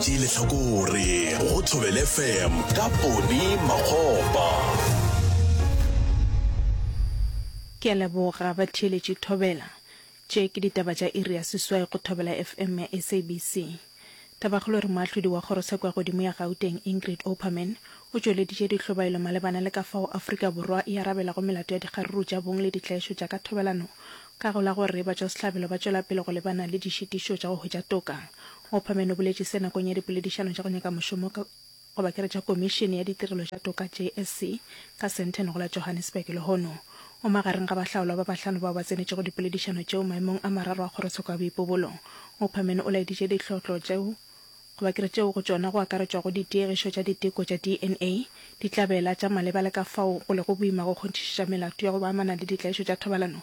Tšee lehlakore go Thobela FM ka Poni Makgopa. Ke a leboga batheeletši Thobela. Tše ke ditaba tša iri ya seswai go Thobela FM ya SABC. Tabakgolo re moahlodi wa kgorosekwa godimo ya Gauteng Ingrid Opperman o tšweleditše dihlobaelo malebana le ka fao Afrika Borwa e arabelago melato ya dikgaruru tša bong le ditlaišo tša ka thobelano ka go la gore batšwasehlabelo ba tšwela pele go lebana le dišitišo tša go hwetša toka Opperman o boletše se nakong ya dipoledišano tša go nyaka mošomo ka goba ke re tša Komišene ya Ditirelo tša Toka, JSC, ka Sandton go la Johannesburg lehono. O magareng ga bahlaolwa ba bahlano bao ba tsenetšego dipoledišano tšeo maemong a mararo a Kgorotsheko ya Boipobolo. Opperman o laeditše ditlhohlo tšeo goba ke re tšeo go tšona go akaretšwago ditiegišo tša diteko tša dna, ditlabela tša maleba le ka fao go lego boima go kgonthišiša melato ya go ba amana le ditlaišo tša thobalano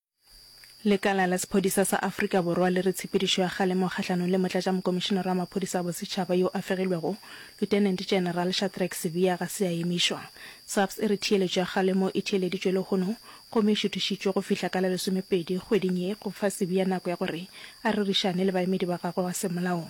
Lekala la Sephodisa sa Afrika Borwa le re tshepedišo ya kgalemo kgahlanong le Motlatšamokomišenare wa Maphodisa a Bosetšhaba yo a fegilwego, Lieutenant General Shadrack Sibiya ga se ya emišwa. SAPS e re theeletšo ya kgalemo e theeleditšwe lehono gomme e šuthišitšwe go fihla ka la lesomepedi kgweding ye go fa Sibiya nako ya gore a rerišane le baemedi ba gagwe wa semolao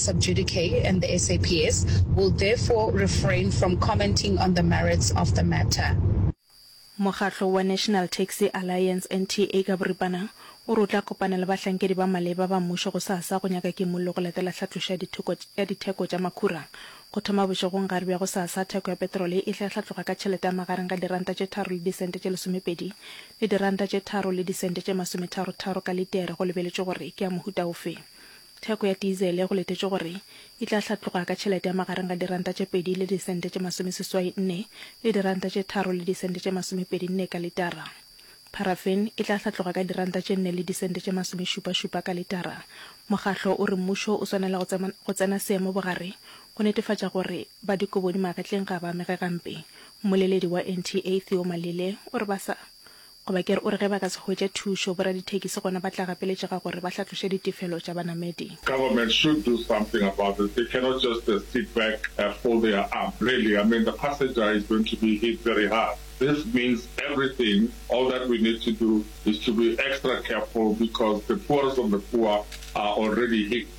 Subjudice and the SAPS will therefore refrain from commenting on the merits of the matter. Mokgatlo wa National Taxi Alliance, NTA, ka boripana o re o tla kopana le bahlankedi ba maleba ba mmušo gosasa go nyaka kimollo go latela tlhatlošo ya dithoko ya ditheko tša makhura. Go thoma bošegong gare bja gosasa, theko ya petrole e tla hlatloga ka tšhelete ya magareng ga diranta tše tharo le disente tše lesomepedi le diranta tše tharo le disente tše masometharo-tharo ka litere go lebeletšwe gore ke ya mohuta ofe. Theko ya tisele go letetšwe gore e tla hlatloga ka tšhelete ya magareng ga diranta tše pedi le disente tše masomeseswai nne le diranta tše tharo le disente tše masomepedi nne ka litara. Paraffin e tla hlatloga ka diranta tše nne le disente tše masomešupašupa ka litara. Mokgahlo o re mmušo o swanela go tsena seemo bogare go netefatša gore ba dikobodi magetleng ga ba amege gampe. Mmoleledi wa NTA Theo Malele o re ba sa Goba ke re o re ge ba ka se hwetše thušo, boradithekisi gona ba tla gapeletšega gore ba hlatloše ditefelo tša banamedi. Government should do something about this, they cannot just sit back and fold their arm, really, I mean the passenger is going to be hit very hard, this means everything, all that we need to do is to be extra careful because the poorest of the poor are already hit.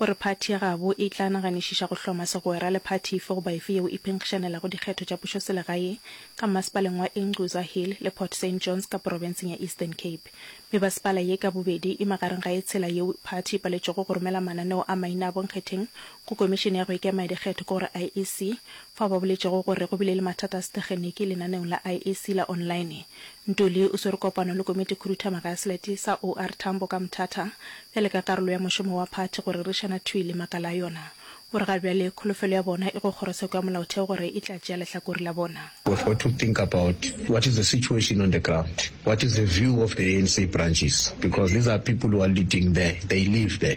O re phathi ya gabo e tla naganišiša go hloma segwera le phathi efe goba efe yeo e phenkgišanelago dikgetho tša pušoselegae ka mmasepaleng wa Ingquza Hill le Port Saint Johns ka porofenseng ya Eastern Cape. Mebasepala ye ka bobedi e magareng ga e tshela yeo phathi e paletšwego go romela mananeo a maina a bonkgetheng go Komišene ya go Ikema ya Dikgetho ke gore IEC, fao ba boletšego gore go bile le mathata a setegeniki lenaneong la IEC la online Ntuli o swere kopano le Komitikhuduthamaga ya Selete sa OR Tambo ka Mthatha bjale ka karolo ya mošomo wa phathi go rerišana thwi le makala a yona. O re ga bjale kholofelo ya bona e go Kgorotsheko ya Molaotheo gore e tla tšea lehlakore la bona. We've got to think about what is the situation on the ground, what is the view of the ANC branches because these are people who are leading there, they live there.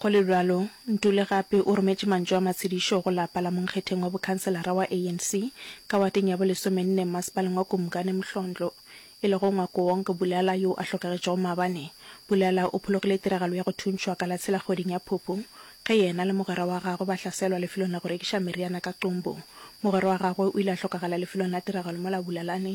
Go le bjalo, Ntuli gape o rometše mantšu a matshedišo go lapa la monkgetheng wa bokhanselara wa ANC ka wateng ya bolesomenne mmasepaleng wa Kumkani Mhlondlo, e lego Ngwakoonk Bulala yo a hlokagetšego maabane. Bulala o phologile tiragalo ya go thuntšhwa ka la tshela kgweding ya Phupu ge yena le mogwera wa gagwe ba hlaselwa lefelong la go rekiša meriana ka Qumbu. Mogwera wa gagwe o ile a hlokagala lefelong la tiragalo mola Bulalane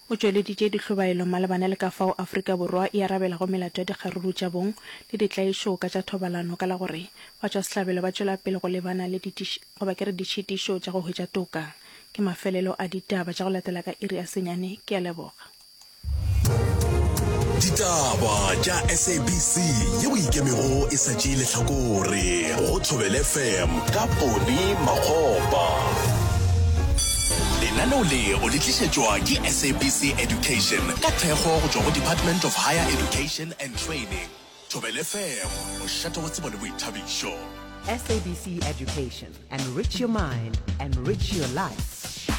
O tšweleditše dihlobaelo malebana le ka fao Afrika Borwa e arabelago melato ya dikgaruru tša bong le ditlaišo ka tša thobalano ka la gore batšwasehlabelo ba tšwela pele go lebana le goba ke re ditšhitišo tša go hwetša toka. Ke mafelelo a ditaba tša go latela ka iri ya senyane. Ke a leboga. Ditaba tša SABC yeo e ikemego e sa tšee lehlakore go Thobelefm ka Pone Makgopa. Lenaneo le o le tlišetšwa ke SABC Education ka thekgo go tšwa go Department of Higher Education and Training. Thobela FM, mošate wa tsebo le boithabišo. SABC Education, enrich your mind, enrich your life.